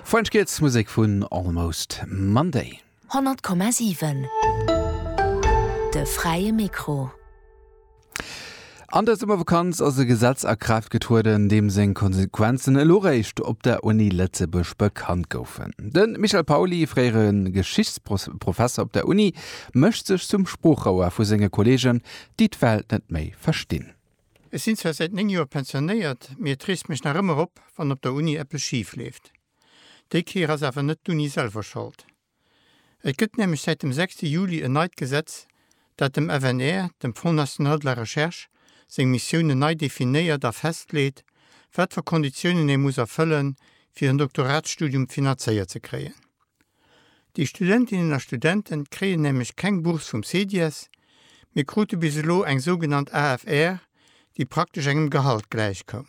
French Kids, Musek vun Almost Monday. 100,7 De fräie Mikro. An der Summervakanz ass e Gesetz a Kraaft getrueden, deem seng Konsequenzen elo réischt op der Uni Lëtzebuerg bekannt goufen. De Michel Pauly, fréiere Geschichtsprofesser op der Uni, mécht sech zum Sproochrouer vu senge Kolleegen, déi d'Welt net méi verstinn. Ech sinn zwar säit 9 Joer pensionéiert, mee et reegt mech nach ëmmer op, wann op der Uni eppes schif leeft. Déi Kéier ass awer net d'Uni selwer Schold. Et gëtt nämlech säit dem 6 Juli en neit Gesetz, dat dem FNR, dem Fonds National de la Recherche, seng Missiounen nei definéiert a festleet, wat fir Konditiounen ee muss erfëllen, fir en Doktoratsstudium finanzéiert ze kréien. Déi Studentinnen a Studenten kréien nämlech keng Bourse vum CEDIES, mee krute bis elo eng sougenannt AFR, déi praktesch engem Gehalt gläichkoum.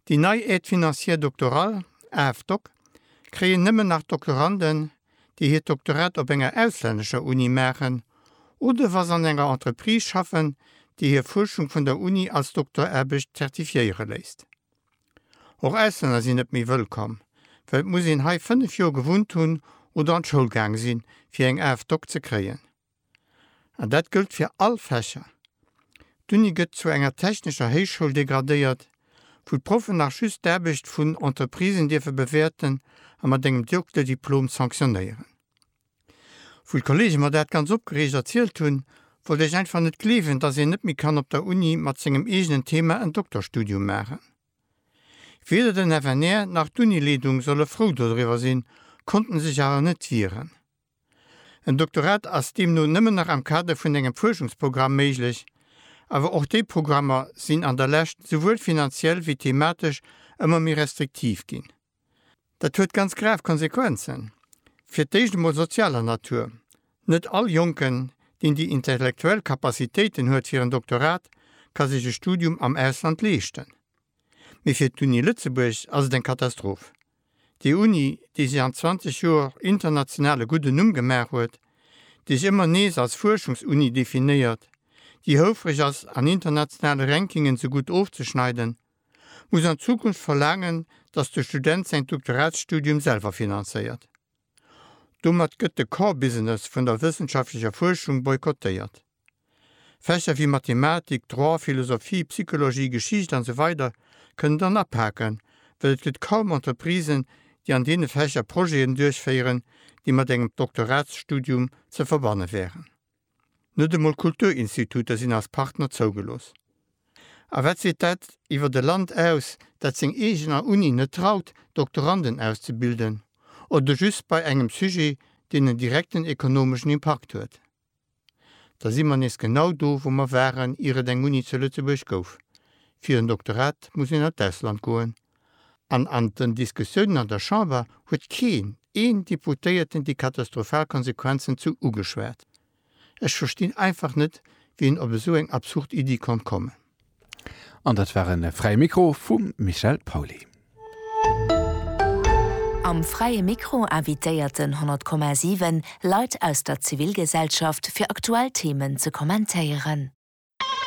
Déi nei Aide financière doctorale, AFDoc, kréien nëmmen nach Doktoranden, déi hiert Doktorat op enger auslännescher Uni maachen oder wa se an enger Entreprise schaffen, déi hir Fuerschung vun der Uni als Doktoraarbecht zertifiéiere léisst. Och Auslänner sinn net méi wëllkomm, well et muss een hei 5 Joer gewunnt hunn oder an d'Schoul gaang sinn, fir eng AFDOC ze kréien. An dat gëllt fir all Fächer. D'Uni gëtt zu enger technescher Héichschoul degradéiert, wou d'Proffen nach just d'Aarbecht vun Entreprisen dierfe bewäerten a mat engem Dokterdiplom sanktionéieren. Wou d'Kollege mer dat ganz opgereegt erzielt hunn, wollt ech einfach net gleewen, dass een net méi kann op der Uni mat sengem eegenen Thema en Dokterstudium maachen. Weder den FNR nach d'Unileedung solle frou dodriwwer sinn, konnten sech awer net wieren. En Doktorat ass deemno nëmmen nach am Kader vun engem Fuerschungsprogramm méiglech, awer och déi Programmer sinn an der Lescht souwuel finanziell wéi thematesch ëmmer méi restriktiv ginn. Dat huet ganz grav Konsequenzen, fir d'éischt emol sozialer Natur, Net all Jonken, deen déi intellektuell Capacitéiten huet fir en Doktorat, ka sech e Studium am Ausland leeschten. Mee fir d'Uni Lëtzebuerg ass et eng Katastroph. Déi Uni, déi sech an 20 Joer international e gudden Numm gemaach huet, déi sech ëmmer nees als Fuerschungsuni definéiert, déi houfreg ass an internationale Rankingen sou gutt ofzeschneiden, muss an Zukunft verlaangen, datt de Student säin Doktoratsstudium selwer finanzéiert. Domat gëtt de Core Business vun der wëssenschaftlecher Fuerschung boykottéiert. Fächer wéi Mathematik, Droit, Philosophie, Psychologie, Geschicht an esou weider kënnen dann apaken, well et gëtt kaum Entreprisen, déi an deene Fächer Projeten duerchféieren, déi mat engem Doktoratsstudium ze verbanne wären. Net emol Kulturinstituter sinn als Partner zougelooss. A wat seet dat iwwert e Land aus, dat seng eegener Uni net traut, Doktoranden auszebilden, oder just bei engem Sujet, deen en direkten ekonomeschen Impakt huet? Da si mer nees genau do, wou mer waren, ier et eng Uni zu Lëtzebuerg gouf. Fir en Doktorat muss een an d'Ausland goen. An an den Diskussiounen an der Chamber huet keen een Deputéierten déi katastrophal Konsequenzen zu ugeschwat. Ech verstinn einfach net, wéi een op esou eng absurd Iddi konnt kommen. An dat war e Fräie Mikro vum Michel Pauly. Am Fräie Mikro invitéiert den 100,7 Leit aus der Zivilgesellschaft fir aktuell Themen ze kommentéieren.